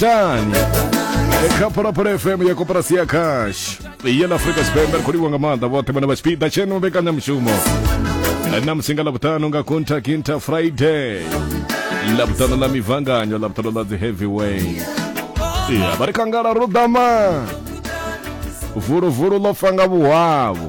tani khaphu la phula fm ya koporasi ya cash ya la afrika tshipembe ri khou livhwa nga maanḓa vhoṱhe vhane vha tshipiḓa tsheno mbekanyamushumo na musi nga lavhuṱanu nga contact inter friday lavhuṱanu ḽa mivanganyo lavhuṱanu ḽa dzi heavyweight ya vha ri kangala ro ḓama vuluvulu ḽo fa nga vhuhwavhu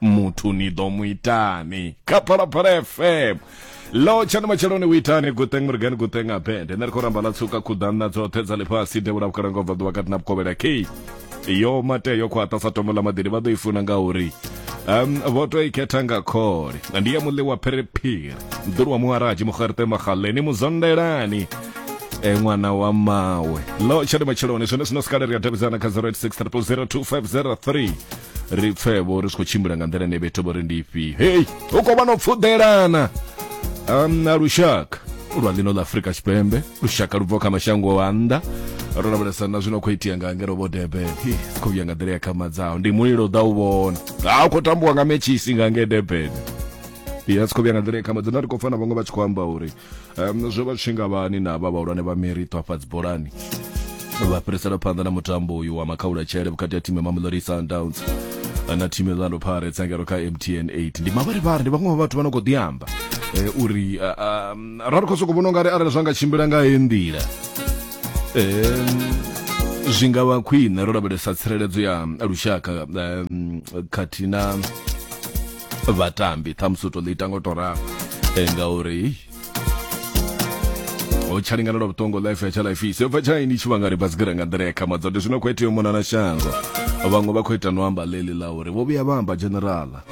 muthu ni ḓo mu itani kha phalaphala fm lo tshani matsheloni u itani guteng murigani guteng abende nṋe ri khou ramba ḽa tsuka khuḓanna dzoṱhe dza ḽifhasi devhula vhukalanga u bva ḓuvha kati na vhukovhela kei yo mate yo khwaṱha sa tombo ḽa maḓini vha ḓo i funa ngauri um vho to i khetha nga khole ndi ya muḽi wa phiriphiri mḓulu wa muharaji mugarite magaleni muzondelani e ṅwana wa mawe lo tshani matsheloni zwone zwino sikale ri a davhidzana kha 086 300 2503 ri pfe vho ri si khou tshimbila nga nḓila ine vhethu vho ri ndi ifhio hei hu khou vha no pfuḓelana na lushaka lwa ḽino ḽa afurika tshipembe lushaka lu bvaho kha mashango a nnḓa ro lavhelesa na zwino khou itea nga ngero vho durban si khou vhuya nga nḓila ya khamadzaho ndi mulilo u ḓa u vhona ha u khou tambiwa nga metshisi nga nge durban ya si khou vhuya nga nḓila ya khamadzaho na ri khou pfa na vhaṅwe vha tshi khou amba uri um, zwo vha tshinga vhani na vha vhahulwane vha merito hafha dzibolani vha fhirisela phanḓa na mutambo uyu wa makhaula tshele vhukati ha thimu ya mamelodi sundowns na thimu ya orlando pirates engelo kha mtn 8 ndi mavharivhari ndi vhaṅwe vha vhathu vha no khou ḓiamba eh, uri ah, ah, ra ri khou sokou vhona ungari arali zwa nga tshimbila nga he nḓila Em, zwi nga vha khwine ro lavhelesa tsireledzo ya lushaka em, khathihi na vhatambi ṱhamusi u to ḽi ita ngo to ralo eh, ngauri ho tsha lingana lwa vhuṱongo life ya tsha life isi yo bva tsha ini tshivhangani basigira nga nḓila ya khamadza ndi zwino khou itea mona na shango vhaṅwe vha khou ita no amba ḽeḽi ḽa uri vho vhuya vha amba generala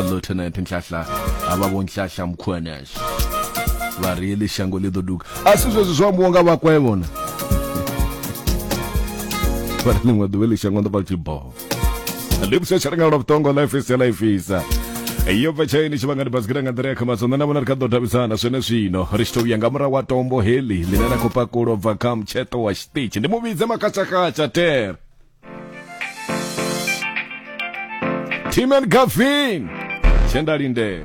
lieutenant nhlahla a vha vho nhlahla mukhuanasha vha ri eḽi shango ḽi ḓo duga a si zwezwi zwo ambiwa nga vhakwevhona vha ri ḽiṅwe ḓuvha ḽi shango ndo vha tshi boho lipsha tsha renga lwa vhuṱongo life is life is iyo bva tshaini tshi vhanga ndi basikira nga nḓila ya khamadzo nṋe na vhona ri kha ḓo davhidzana zwene zwino ri tshi to vhuya nga murahu wa tombo heli ḽine na khou pakulo bva kha mutsheṱo wa tshiṱitshi ndi mu vhidze makhatshakhatsha ter tim and gavin tshe nda lindela